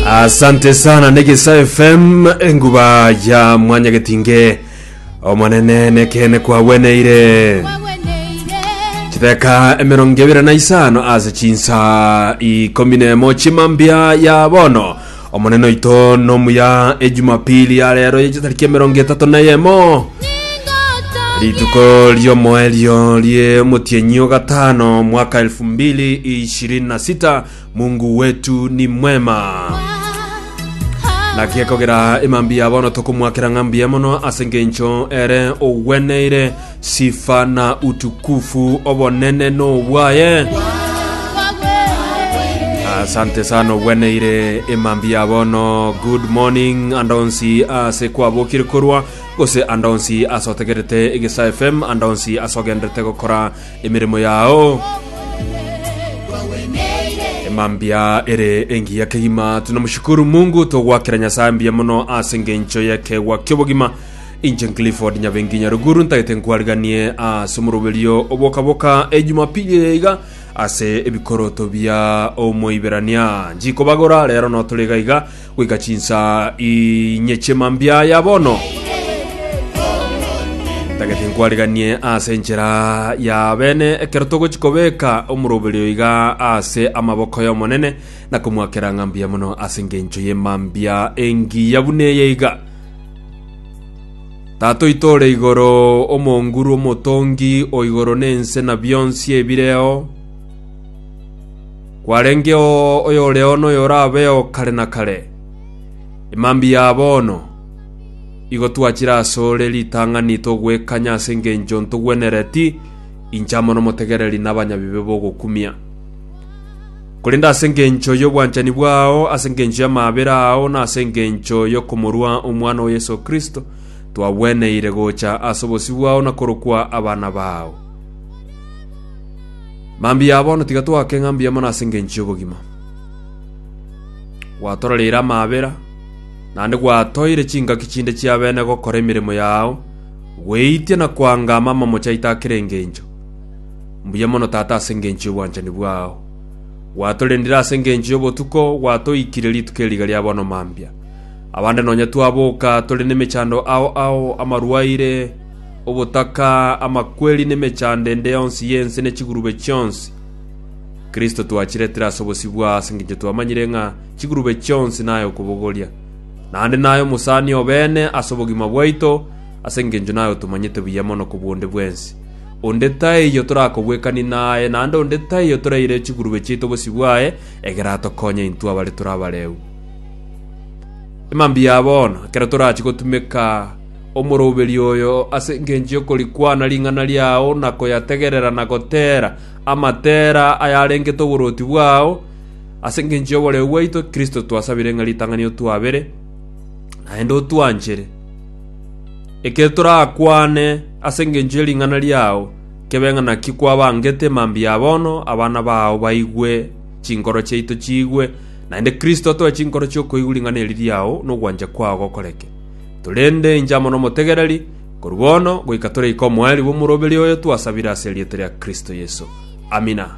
asante sana negesa fm enguba ya mwanya getinge omonene nekene kwagweneire chideka emerongo ebere na isano ase chinsa ikomi nemo chimambia ya bono omonene oito nomuya ejumapili ya rero yechitariki emerongo etato na yemo rituko riomoerio rie motienyi ogatano mwaka 2026 Mungu wetu ni mwema. Naki ekogera emambia bono tokomoakera ng'a mbuya mono ase engencho ere ogweneire sifa na utukufu obonene n'obwaye. Asante sana ogweneire emambia bono. Good morning andonsi ase kwabokire korwa gose andonsi asotegerete egesa FM andonsi asogenderete gokora emeremo yao emambia ere engiya kegima tunamushukuru mungu togwakera nyasaye mbuya mono ase engencho y'ekegwa ki'obogima inche clifford nyabengi nyaruguru ntagete nkwariganie ase omoroberio obokaboka ejumapili eye iga ase ebikoroto bia omoiberania njikobagora rero notorega iga Goika chinsaa inyeche mambia aya bono, ntagete nkwariganie ase enchera ya bene ekero togochi kobeka omoroberi oyo iga ase amaboko y'Omonene, na komoakera ng'a mbuya mono ase engencho ye mambia engiya buna eye iga. Tata oito ore igoro, omonguru, omotongi o igoro na ense na bionsi ebireo, Kwarengeo oyoreo noyorabeo kare na kare, emambi ya bono, igo twachire asore ritang'ani togwekanya ase engencho ntogwenereti inche amo nomotegereri na abanyabibe bogokumia. Korende ase engencho y'obwanchani bwao, ase engencho y'amaabera ao, na ase engencho yokomorua Omwana o Yeso Kristo, twagweneire gocha ase obosio bwao na korokwa abana bao. Mambia bono tiga twake ng'a mbuya mono ase engencho y'obogima. Gwatororeire amaabera, naende gwatoeire chingaki chinde chi'abene gokora emeremo yao, gweitia na koanga amama mochaito a kera engencho. Mbuya mono Tata ase engencho y'obwanchani bwao. Gwatorendire ase engencho y'obotuko, gwatoikire rituko eri riga ria bono mambia. Abande nonya twaboka tore nemechando ao ao amarwaire, obotaka, amakweri, na emechando ende yonsi y'ense ne chigurube chionsi. Kristo twachiretire ase obosibwa ase engencho twamanyire ng'a chigurube chionsi naye okobogoria. Naende naye omosani obeene ase obogima bwaito, ase engencho naye otomanyete buya mono kobua onde bwensi. Onde taiyo torakobwekani naye, naende onde taiyo toraire chigurube chiaito obosio bwaye, egere atokonye intwe abare tore abareu. Mambia bono, ekero torachie gotumeka Omoroberio oyo ase engencho y'okorikwana ring'ana riao na koyategerera na goteera amatera ayarengete oborwoti bwao, ase engencho y'oboreu bwaito Kristo twasabire ng'a ritang'ani otwabere, naende otwanchere. Ekero torakwane ase engencho ye ring'ana riao, kebe ng'a naki kwabangete mambia bono abana bao baigwe, chinkoro chiaito chiigwe, naende Kristo atoe chinkoro chi'okoigwa ring'ana eri riao nogwancha kwao gokoreke. Torende inche amo nomotegereri, korwa bono goika tore iko omoerio bw'omoroberio oyo twasabire ase erieta ria Kristo Yeso. Amina.